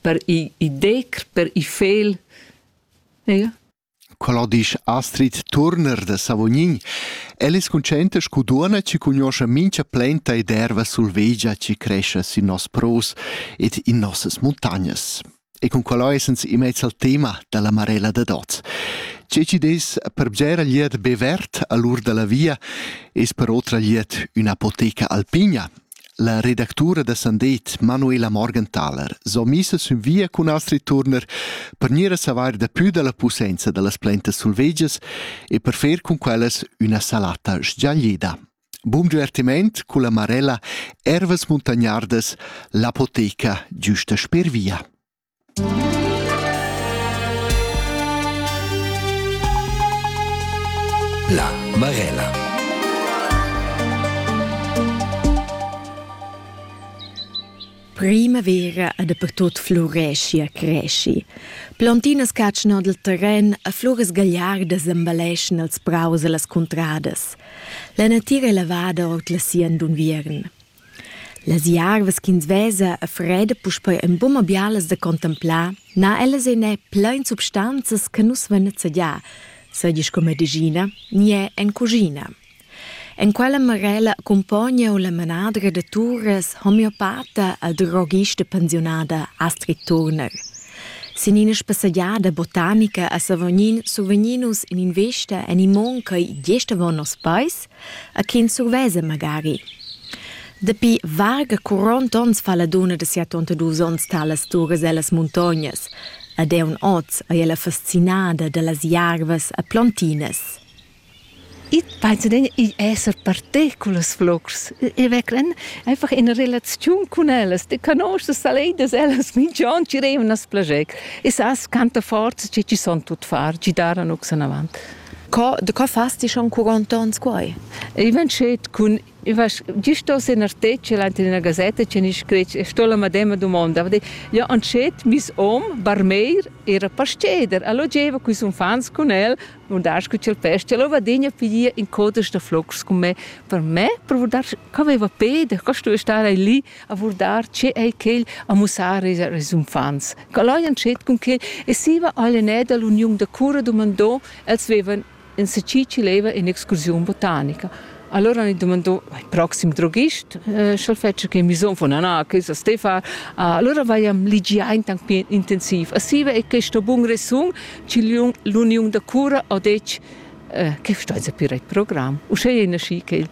per i decr, per i fel. Ja. Quella disch Astrid Turner da Savognin. El es consciente scu duonna ci cugnoscha mincha plenta ed erva sulvegia ci crescia sin nos pros ed in nossas muntagnas. E con quella essens immez al tema dalla Marella da Doz. Ce ci des per bgera liet be vert all'ur dalla via es per otra liet üna apoteca alpina La redactura da Sandet, Manuela Morgenthaler, so missa sün via cun Astrid Turner per gnir a savair dapü da la pussainza da las plantas sulvegias e per fer cun quellas üna salata sgiaglida. Bun divertiment culla Marella Ervas Muntagnardas, l'apoteca giüsta sper via. La Marella. Primavera e dapertut fluresci e cresci. Plantinas catschan dal terren e floras gagliardas embelleschan els praus e las cuntradas. La natira è lavada ord la sien d'unviern. Las jarvas ch'ins vesa a freda puspei en buma bialas da contemplar, n'ha ellas en è plein substanzas che nus vein nezzadià, seigi sco medischina ni è en cuschina. En quella marella accumpogna la manadra da turas homeopata la drogista pensiunada Astrid Turner. Sin ina spassegiada botanica a Savognin survegnin nus in'invista en imon ch'ei gest avon nos peis a chi ins surveza magari. Dapi varga 40 onns fa la dunna da sia tontadus onns talas turas ellas muntognas, ed eun oz ei ella fascinada dallas jarvas e plontinas. Ich penso dann, ich esse partì con las flocks. Ich vecklen einfach in relaziun con ellas. Ti conosces saledas, ellas minch'on ci revan as plager. E sas quanta forza che ci son tut far, ci daran ox in avant. Co, de co fas ti schon quarantons quai? I van schet cun Dio sto se nartece ante una gazetta che ni scretg e sto la madema domanda. Ja antschet mis om barmeir era pasceder, allo geva quis unfants con el, un das cu cel pesce, lo vadegna piglia in codas da flocs con me. Per me, per dar, co aveva pede, co sto stare lì a vurdar tge è quel a mussar ils uffants. Quel hajan schet cun quel e siva all'enè da l'uniun da cura dumandò, els vevan en Seci chi leva in'excursiun botanica. Allora hanno domandato il prossimo droghist, sch'el fetscha che misom von Anna, che sa Stefan. Allora vaiam ligià intanc pli intensiv. A siva è questo bun resun che l'uniun da cura ha detg che sta a pir il program. Uschè è nasci quel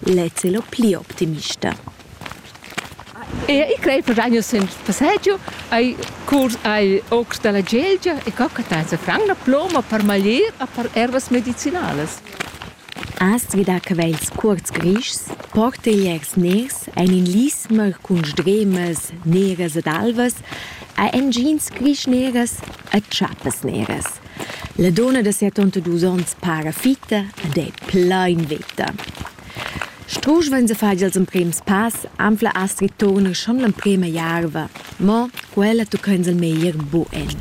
Lez è lo pli optimista. E i crei per anno sen passaggio ai curs ai ocs dalla Gelgia e co che ta fran la ploma per maglier a per ervas medicinalas. Astgida che vels cuorts grischs, porteliers ners ein in lismer cun sdremas neras ed alvas, a engins grisch neras e tschappes neras. La donna da 72 onns para fitta ed è plain veta. Strusch vegn a far ils emprims pass, anfla Astrid Turner schon l'emprima jarva, mo quella tucca ins il meglier buen.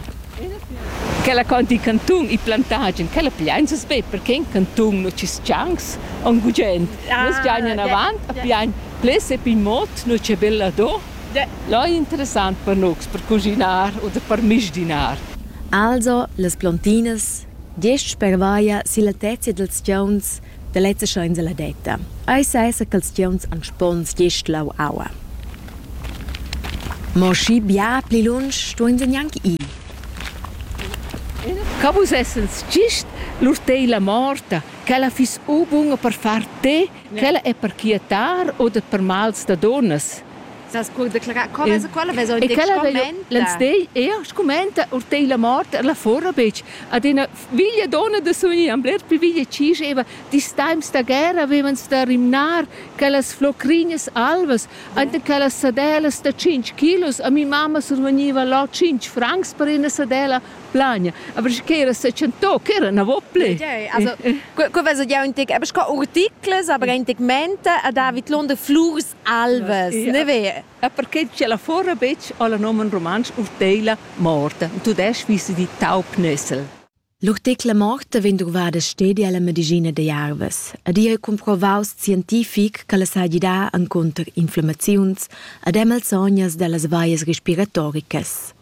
Quella conti cantun e plantagen, quella piains be perché in cantun nu ci schangs on gugent. Ah, Nus giain in avant, a piain ples e pin mot, nu c'è bella do. Là è interessant per nus per cuschinar u da per misdinar. Also, las plontinas, gest spervaia silla tezia dals tgauns da lezza scha insaladetta. Ei sesa ch'ils tgauns han spons gest lau aua. Mo schi bia pli lunsch stuein se gnanc ir. Ca vus essens gist lur teila morta, che ella fiss u bunga per far te Quella è per quietar u dat per mals da dunnas? Sas co declarar quellas e quella vesa in scumond? L'enstagl er scumenta or te la mort er la fora betg. Ad ina viglia donna da suni am bler pli viglia ci scheva dis times da guerra avevan da rimnar quellas flocrinas alvas ante quellas sadelas da 5 kilos a mi mamma surveniva là 5 francs per ina sadela Plania. Aber che era secentò, che era una vople. Also, que vesa jau un tic, aber sco articles, aber ein tic mente a David Lunder Flurs Alves, ne vere? E perché c'è la fora betg alla nomen romansch urteila morte. Tu desch visi di taupnessel. L'urtecla morte vegn drovada stedi alla medicina de Jarves ed ei comprovaus scientific che la sa gidar encunter inflammaziuns ad emalsognas dallas vallas respiratoricas.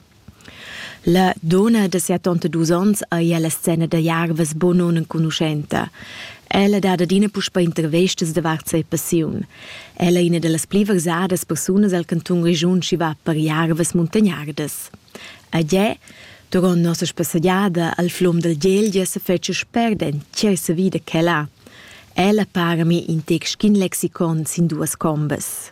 La dunna da siatonta dus onns ei ella scena da jarvas buca nunenconuschenta. Ella dat adina puspei intervestas davart sia passiun. Ella è ina dallas pli versadas persunas el cantun Grischun chi va per jarvas muntagnardas. A Gie, duront nossa spassegiada al flum dal Gelgia se fece sperdent cersa vida che la. Ella para mi in tec schin lexicon sin duas combas.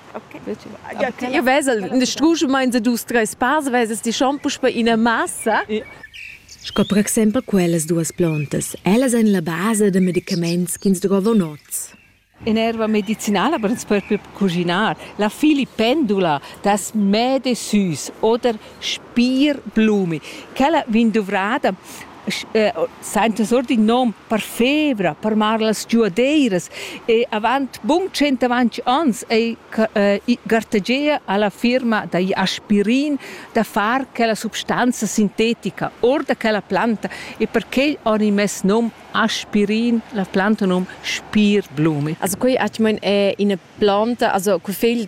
Io vesel in struschemaint da dus, treis pass, vesas ti schon puspe ina massa. Sco per exempel quellas duas plantas. Ellas èn la basa da medicaments ch'ins drovan oz. In erva medicinala per ins propi cuginar. La filipendula das Mädesüß oder Spierblume. Quella vegn duvrada saintas our d'ün nom per fevra, per mar las giuadeiras e avant bun tschentavant ans ei gartegia alla firma da aspirin da far quella substanza sintetica our da quella planta e perquei ho i mess nom aspirin, la planta nom spirblumi. Also quei atgmain è ina planta, also col fegl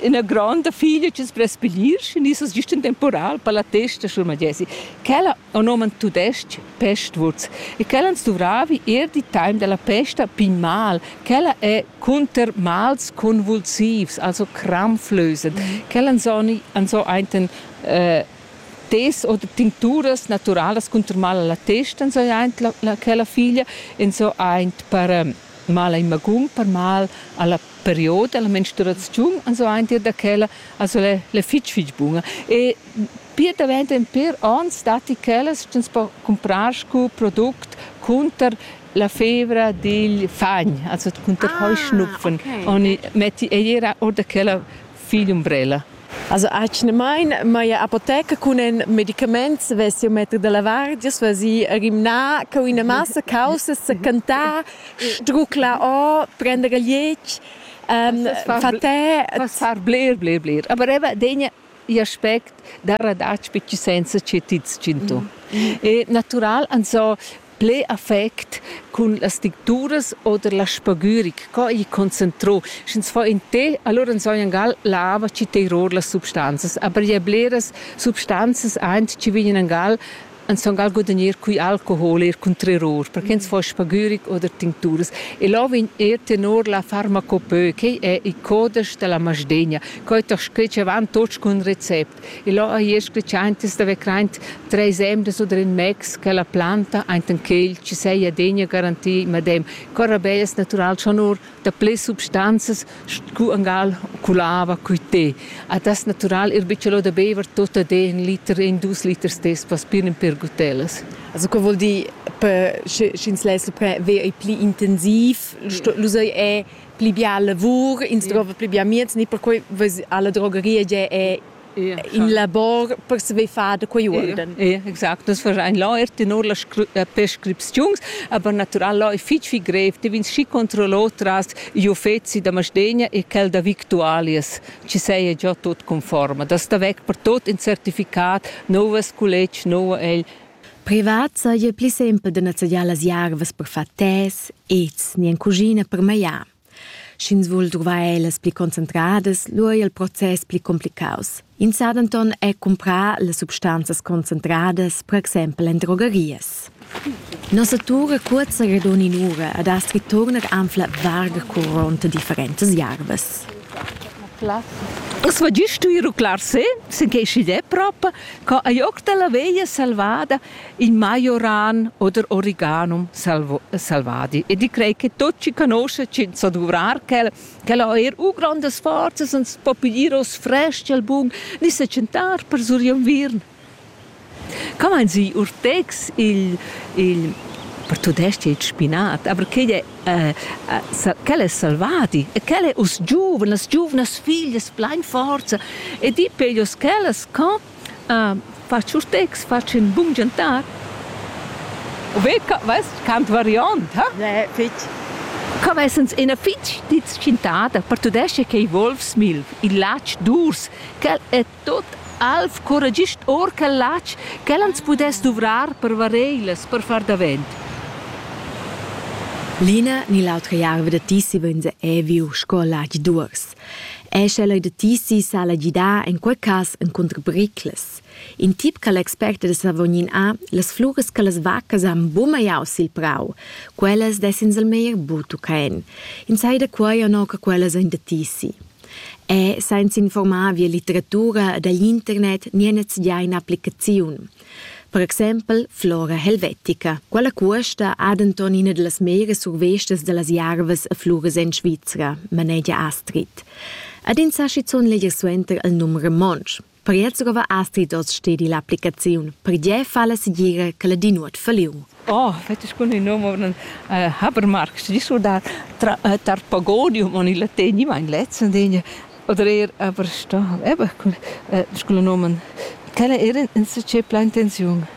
ina gronda figlia che sbrespelir in isas gist temporal per la testa sur Magesi. Quella on oman tudestg pestwurz e quella ans duvravi er di time della pesta pin mal. Quella è cunter mals convulsivs, also krampflösend. Mhm. Quella ans so einten äh, tes oder tincturas naturalas cunter mal alla testa, so eint la, la, quella figlia, en so eint per ähm, mal in magum, per mal alla period dalla menstruaziun ans aunc da quella also le, le fitg fitg bunga e pir davent en per ans datti quellas ch'ins po comprar sco product cunter la fevra digl fagn also cunter ah, heuschnupfen okay. oni metti ei era oder quella Figl umbrella. Also atgnamain m'haja apoteca cun in medicament svess il metter da lavar, giast vesì rimnà co ina massa caussas sa cantar, struclar or, prender il liec, fatè. Far bler, bler, bler. Aber eben den aspect da radatsch betg senza che ti tschinto. E natural, also ple affect cun las dicturas oder la spagüric, co ei concentrò, sch'ins fa in tè, allora nsognan gal lava chi teiror las substanzas, aber je bleras substanzas eint chi vegnan gal nsong gal gudagnir cui alcohol er cun terror, perché ins fa spagüric oder tincturas. E là vegn er tenor la farmacopeu, quei è il codesch della Masdegna, co è doch scritg avant tots cun recept. E là ha io scletschantas da vecraint treis emdas oder in mex quella planta ainten quel chi seia degna garantir madem corrabellas natural schon or da ple substanzas scu angal culava cui te. A das natural ir bicciolo da beiver tot a de in liter e in dus liters des paspirin per gutellas. Also co vuol dir per sch'ins less ver ei pli intensiv? Lu sei è pli bia lavur, ins sì. drova pli bia mieds, ni perquei alla drogeria è ja, in labor per saver far da quei urden. Ja, exact, das wahrscheinlich läuft nur las prescripziuns, aber natural läuft fitch viel grev, die vins schi controllo tras gli uffezi da Masdegna e quel da Victualias, ci sei già tot conforme, das da weg per tot in certificat, novas college, novo egl Privat saja pli simpel da nezzadiar las jarvas per far tes, ets ni en cuschina per magliar. Sch'ins vul druvar ellas pli concentradas, lura è il process pli complicaus. Ins sa denton er cumprar las substanzas concentradas, per exempel en drogerias. Nossa tur è curta ed onin'ura ed has returnar anfla varga curronta differentas jarvas. Uss va gist tu ruclar se, sin che sch'igl è prop, Co ei oc dalla veglia selvada il majoran oder origanum selvadi e di crei che tot chi conosce chi sa duvrar quel quel ha eir u grandas forzas uns po piglier os fresc al bun ni se tschentar per sur inviern Come meinen Sie urtegs il il per tudestg il spinat, aber quei è quel es selvadi e quel es uss giuven, las giuvnas figlias plain forza e di peglios quellas co fast sus tex, fast ün bun giantar. U ve co vest cant variond, ha? Ne, fich. Co vessans üna fich ditschintada per tudais-cha che volvs, Milv, il latg d'urs, quel e Tot alv curra gist or quel latg ch'el ans pudess duvrar per vareilas, per far davent. L'ina ni l'autra jarva da tissi vegns ei viu sco latg d'uors. Ei sche leu da tissi sala gidar en quei cass encunter briclas. In tip che l'expert da Savognin ha, las fluras che las vaccas han bumagliau sil prau, quellas dess'ins al meglier buca en. Ins ei da quei o no che quellas ein da tissi. E sainza informar via litteratura da l'internet nian stugià in'applicaziun. Per exempel Flora Helvetica. Quella cuosta ha denton ina delle meglio survestas delle Järves e Flores en Svizzera, manegia Astrid. Ad ins ha schizunt leger suenter il num romontsch. Per Jerzegova astri hoz stedi l'applicaziun, pergiè falla segira che la di nuot falliun. Oh, fetg bun il nome uh, Habermark, sti surdar tra, uh, tar Pagodium en il latin, ich mein letzten Dinge, oder eher aber sta, eben, uh, sculla nomen, quella era in se c'è pla intenziun.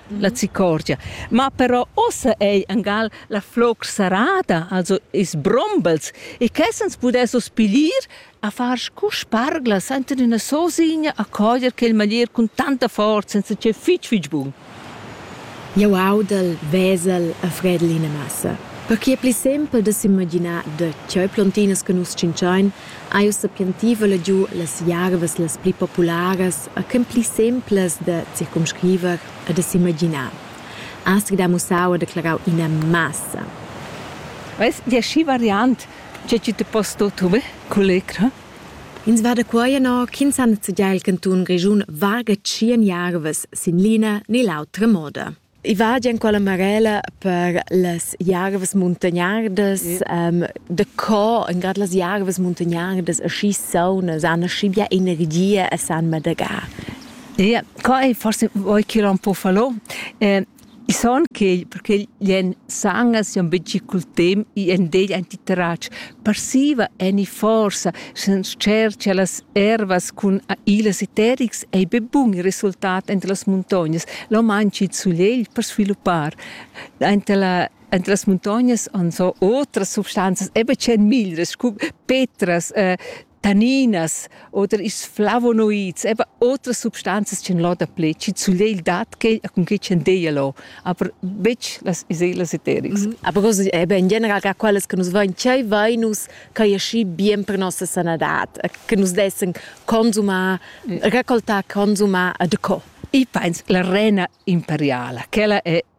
la zicorgia. Ma però ossa ei angal la floc sarada, also is brombels, e che sens pudess os pilir a far scu sparglas enten üna sosigna a coger quel maglier cun tanta forza senza che fitg fitg bun. Jau audel, vesel a fredel ina massa. Perché è pli sempel da s'imaginar da tgei plontinas che nus tschintschain ha jeu sapientevel giu las jarvas las pli popularas e quen pli semplas da circumscriver e da s'imaginar. Astg da mussau e declarau ina massa. Veis dir schi variant, tge tgi te poss do tu culecra? Ins va da quei ennà ch'ins ha nezegià il cantun Grischun varga tschien jarvas sin l'ina ne l'autra moda. I va già in quella marella per las jarvas muntagnardas, ehm, da co in grad las jarvas muntagnardas aschi saunas han aschi bia energia e san madagar. Ie, qua ei forse voi ch'el un po falò. Ehm, i son quei perché gli en sangas jan be gi cul temp i en degl antitrac. passiva eni forsa sens cer che las ervas cun ilas e terics ei be bun il resultat entre las muntognas lo manchi il sulegl per sviluppar entre la entre las muntognas han so otras substanzas eben c'en miglras cu petras eh, taninas oder is flavonoids, eben otras substanzas ch'en lo dapli, chi zugliel dat che cun che ch'en deia lo, aber betg las iselas eterics. Mm Aber così è in general che quelle che nus vain chai vainus ch'ai ascì bien per nossa sanadad, che nus dessen consumar, mm. raccoltar, consumar a de co. I pens la rena imperiala, quella è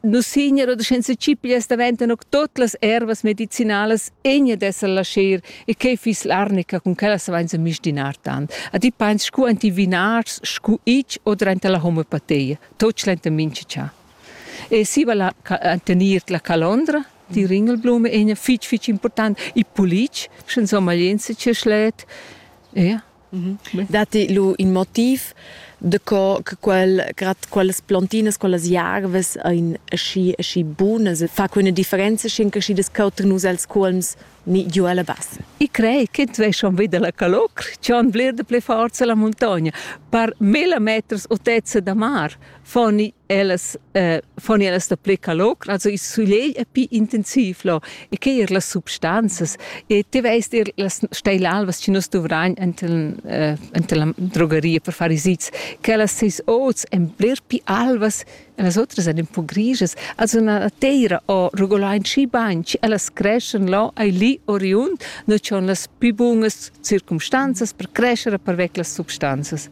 Nus signer oder senza cipias daventan auch tot las ervas medicinalas egna d'esser lascher e quei fiss l'arnica cun quella savenza mistinar tant. A ti pains scu enti vinars scu ich oder enta la homeopatia, tot schlenta mincha cha. E si va la tenir la calondra, die Ringelblume egna fitg fitg important, i pulic, sche insomma jens che schlet. Ja. Datti lu in motiv de co che quel, grad quellas plontinas, quellas jarvas ein aschi, aschi bunas e fa quella differenza schin che schi das cauter nus els cuolms ni giu ella bassa? I crei ch'ins vei schon vida la calocr, che han vlir de pli forza la muntogna. Per mille meters otezza da mar foni ellas eh, foni ellas da ple calor also il soleil è più intensiv lo e che er las substanzas e te veist er las steil alvas ci nos dovrain enten eh, enten drogeria per fare sits che las seis oz en bler più alvas e las otras en un po' griges also una teira o rugolain ci bain ci ellas creschen lo ai lì oriund no c'on las più bunas circumstanzas per crescere per vec las substanzas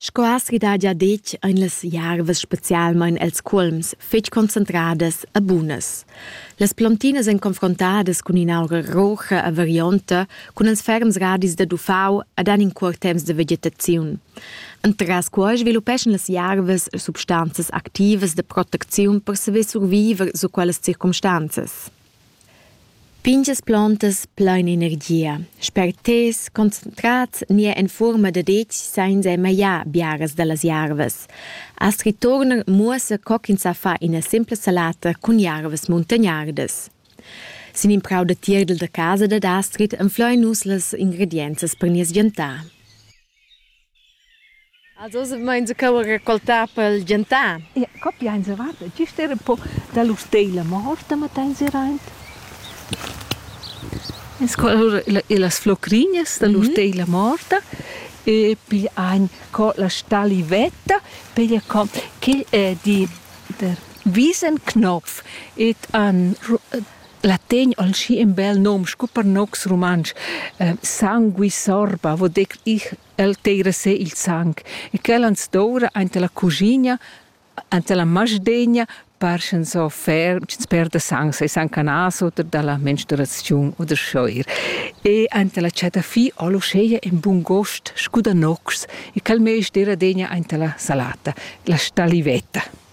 Sco aschi daja detg ein las jarvas specialmein els cuolms fetg concentradas e bunas. Las plontinas ein confrontadas cun in'aura roja e varionta, cun ils ferms radis dad uffau ed han in cuort temps de vegetaziun. Entras quei sviluppeschan las jarvas substanzas activas de protecziun per saver surviver su quellas circumstanzas. Pintgas plantas plain energia, sperters, concentrats nia en fuorma da detg sainza magliar biaras dallas jarvas. Astrid Turner muossa co ch'ins sa far ina simpla salata cun jarvas muntagnardas. Sin in prau da tierdel da casa dad Astrid anflein nus las ingredienzas per nies gentar. Also oz meins cheu raccoltà pel gentan. Ja, copia eins avat, gist era un po dalla usteila, ma hosta matta eins era aint. En scola las flocrinhas dalla usteila morta e piglia ein co la stalivetta, piglia co quel è di der Wiesenknopf et an La tegn ol schi in bel nom scu per nocs rumantsch, eh, sangue sorba, vo dec ich, el teira se il sang, e quel ans doura aint la cugina, ant la masdegna, par sch'ns offer, sch'ns perda sang, sei sang canas oder dalla menstruaziun oder schoir. E ant la cetafi ol uscheia in bun gost scu da nocs, e quel meis dera degna aint la salata, la stalivetta.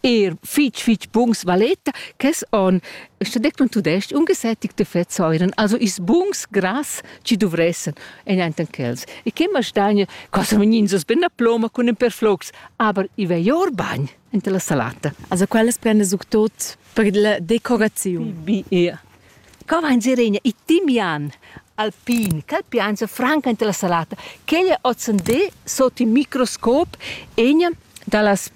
er fitg fitg buns valeta quest on sta detto in tudestg un gesättigt de fettsäuren also is buns gras ci dovressen en enten quels e che mastagna cosa vegnins us ben a ploma cun en perflox aber i ve jor bagn ente la salata also quellas prende suc tot per la decorazione bi ja Co vain Sirenia i timian alpin, cal piansa franca ante la salata, quella ozzandé sot il microscop egna da las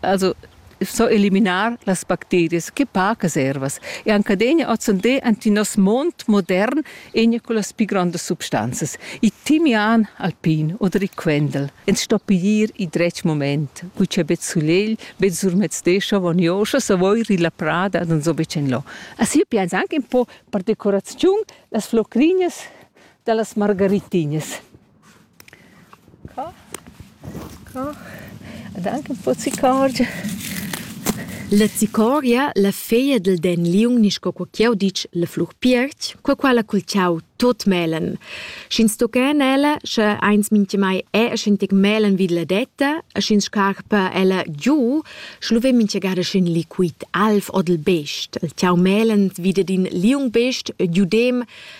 Also so eliminar las bacterias che pacas ervas e anche degna ozzender anti nos mond modern enia con las pi grandas substanzas i timian alpin oder i quendel ins sto piglier i dretg moment cu c'è bet sulegl bet surmezzescha vonioscha savoir illa prada non so betg en lo assi pians anche un po per decoraziun las flocrinias dallas margaritinas Co? Co? Ed anche un po' zicorgia. La zicoria, la feia dal den liung, nisch co qua ch'jau ditg la flur piertg, qua quella cul chau tot melen. Sch'ins tochen ella, sche eins mintga mai è, sch'in tec melen vid la detta, e sch'ins scarpa ella giu, schluve mintga gada sch'in liquid alv od il best. Il chau melen vida d'in liung best, e giudem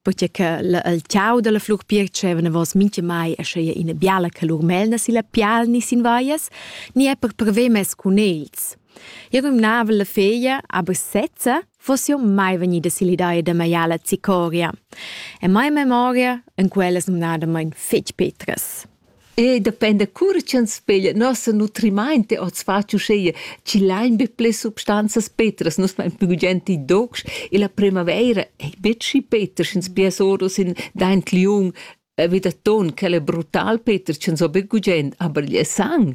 Perché che il ciau della flur pir dicevano vos minche mai è sche ina biala che lur melna si la pial ni sin vaias, ni è per prever mes cun els. Io gumnava la feglia, aber sezza, fosse io mai venida sill'idea da maiala Zicoria. E mai memoria, in quella sumnada mein fetg petras. E dependa cura ch'ins peglia nossa nutrimainta oz fatg uschea chi lain be ples substanzas petras, nus vain plü gugent i docs e la primavaira ei betg schi peter sch'ins pias oros in daint liung vi da ton, quel è brutal peter, ch'ins ho be gugent, aber il sang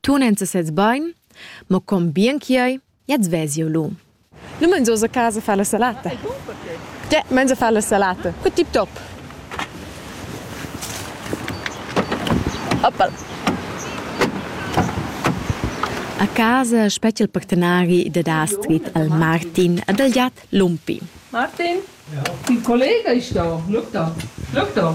Tu n'ens sez bain, ma com bien chi'ei, jaz ves jeu lu. Nu mangias a casa fa la salata? Te mangia fa la salata. Que tip top. Oppal. A casa spetg il partenari da Da Street al Martin ad al jat Lumpi. Martin, il collega ist da. Schau da. Schau da.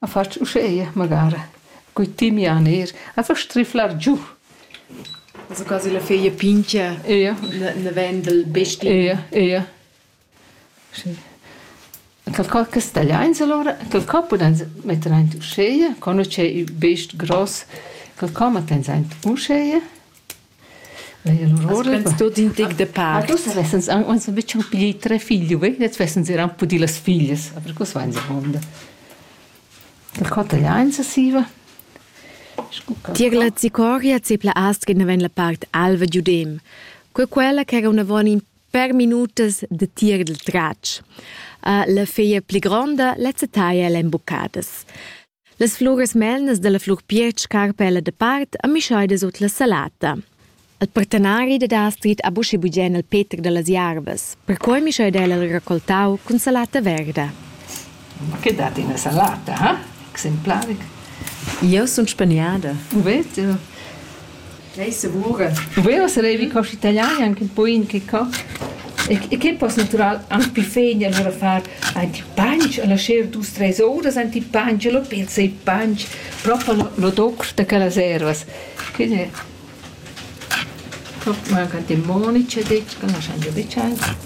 A fatsch uscheia magara cun timian eir a fa striflar giù. Also quasi la feia pincha eia na vain dal besti. Eia eia. Schi. Qualcosa castagliains alura, qualcosa pudans metter aint uscheia, co nu d'he il best gross, qualcosa mettans aint uscheia. As tuot in tic da pa. Tuots avessans aunc uns a bütsch pli tre figli, vei? Jetzt wessens eran pudì las figlias, aber cos vain sa honda? Dal cotagliainsa siva? Tiegla zicoria zepla astga naven la part alva giudem. Que quella ch'era una von in per minutas de tir del tratsch. Uh, la feia pli gronda, lezza taia l'embucadas. Las fluras melnas dalla flur piec carpa ella dapart a mischeida sut la salata. Il partenari dat ha scrit ab uschi bugen al Peter dallas jarvas. Perquei mischeida el il raccoltau cun salata verda. Ma che dat ina salata, ha? Exemplaric. Io sun spaniada. U vedi? Ei segura. U veva sarevi cosch italian anche un po in che co. E che poss natural anche pi fein allora far anche panch alla scher dus treis horas anche panch lo pezza e panch proprio lo, lo doc da quellas ervas. Quindi manca te monice detg, che non sanno becciare.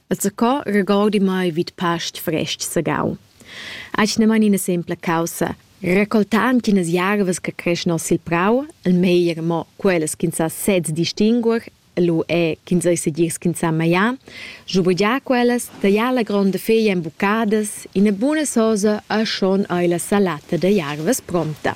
E zaco regordi mai vid past frestg sagau. Asch ne man ina sempla caussa, recoltand chinas jarvas che creschan sil prau, il meglier mo quellas ch'ins sa sez distinguer, lu è ch'ins ei segir ch'ins sa maià, schubegià quellas, taglià la gronda feglia en buccadas, ina buna sosa e schon ei la salata da jarvas pronta.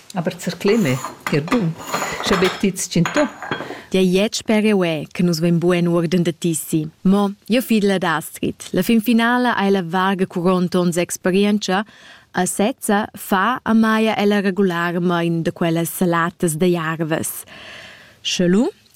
Aber zercleme, er bun, sche be ti tschintò. Dei jet sper eu e che nus vein bugen uorden da tissi. Mo, jeu fid la d'Astrid. La fin finala ei la varga curonta ons experientscha, a sezza fa a Maja ella regularmain da quellas salatas da jarvas. Sche lu,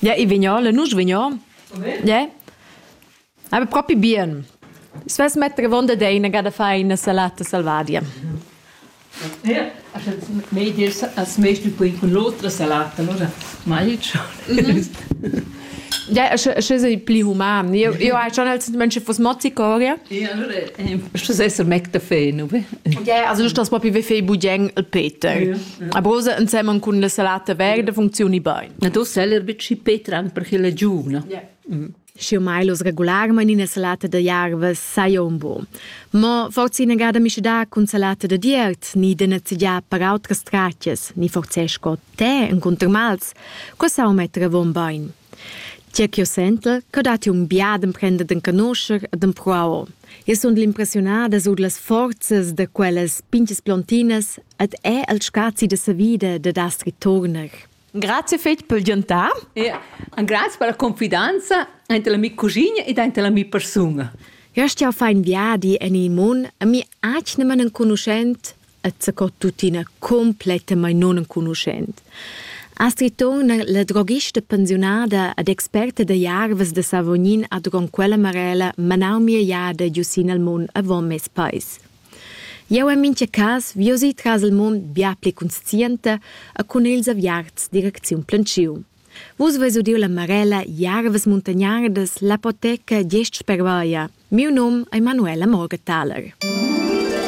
Ja, i vignole, nus vignon. Ja. Aber proprio bien. Es vas mettere avonda dei una gada fai una salata salvadia. Ja, also mehr dir als meiste poi con l'altra salata, allora mai ciò. Ja, sche sei pli human. Io io hai schon als Menschen was Mozzicoria. Ja, allora sche sei so mecta feno. Ja, also das proprio wie fei budien il Peter. A brosa insemmen con la salata verde funzioni bene. Na tu sei er bici Peter anche per chile giuna. Ja. Și Milos regularment ina salata de jarva sai un bo. Ma forse ina gada mi da cun salata de diert, ni de nezigia per autras tracces, ni forse scot Te encunter mals, co sau metter avon bein. Tge ch'io sentel, che datti un biad emprender d'encanoscher e d'empruar. Io sun l'impressionada sur las forzas da quellas pinches plontinas et è al scazi de sa vida de das ritorner. Grazie fetg per giantar. E grazie per la confidenza ante la mia cugina ed ante la mia persona. Io stia fein viadi en il mun e mi acne man enconuschent et sco tuttina complettamain nunenconuschent. Astrid Thon, la droghista pensiunada ed experta da jarvas da Savognin a Dron quella Marella manau mia jada giu sin al mund avon mes pais. Jau en mintga cas viosi tras il mund bia pli conscienta e cun ils aviarts direcziun planciu. Vus veis udiu la Marella Jarvas Muntagnardas, l'apoteca Gest spervaia. Miu num è Manuela Morgenthaler.